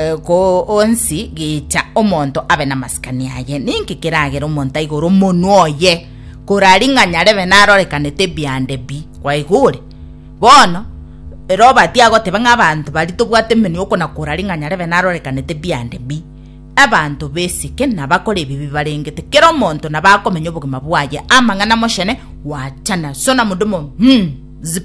Goonsi gicha omonto abe namasikani aye. Ninki kiragere omonto aigore omonwa oye, korari ng'a nyarebe narorekanete ebiande bi gwaigure? Bono, Robert agoteba ng'a abanto bari tobwate emenwa okona korari ng'a nyarebe narorekanete ebiande bi. Abanto besike nabakore ebibi barengete, kera omonto nabakomenya obogima bwaye amang'ana mochene gwachana. Sona modumo, Hm. Zip.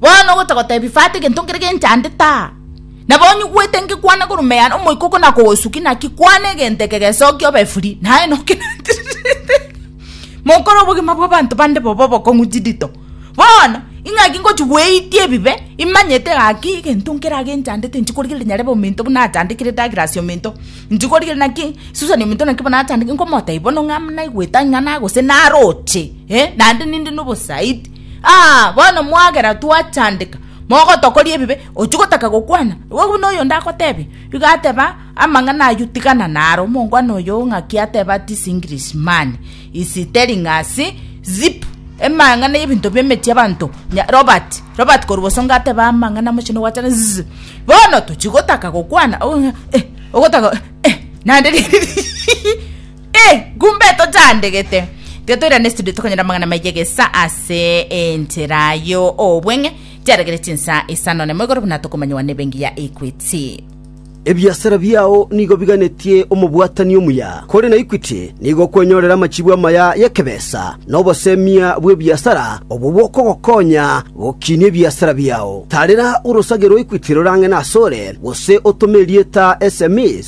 Bono ogocha gotebi fata egento nkere genchande taa. Nabo onye ogwete ngekwana korwa meyane omoika oko nakogosuki naki kwana egento eke gesoki obe free naye noke natirete mokore obogima bwa abanto bande bobe obokong'u chidito bono ingaki ngochi goetia ebibe imanyete gaki egento nkera genchandete inche korigereria nyare bobe ominto buna achandekire Douglas ominto inche korigereria naki Susan ominto naki bono achandekire nkomotebia bono ng'a naigwete aing'ana gose naroche naende ninde na obosaidi. Aa, bono mwagera twachandeka, mogotokoria ebibe, ochia gotaka gokwana? Igo buna oyonde agotebia. Igo ateba, Amang'ana ayio tigana naro, omongwana oyo o ng'aki ateba ati This English man is telling us zip, emang'ana y'ebinto bi'emechie y'abanto, nya Robert, Robert korwa bosongo ateba amang'ana amochenu gwachana zzzp, bono tochia gotaka gokwana, ogotaka eh, eh, nande riria rigiya. Ee, ngumbe tochandegete, tiga toirane studio tokonyora amang'ana maiya gesa ase enchera yo obweng'e chiaregere chinsa isano nemo igoro buna tokomanywa nebengi ya Equity. Ebiasara biao nigo biganetie omobwatani omuya, kore na Equity nigo okwenyorera amachibu amaya y'ekebesa na obosemia bw'ebiasara obwo bokogokonya gokinia ebiasara biao. Tarera orosage rwa Equity rorang'e nasore, gose otome erieta SMEs.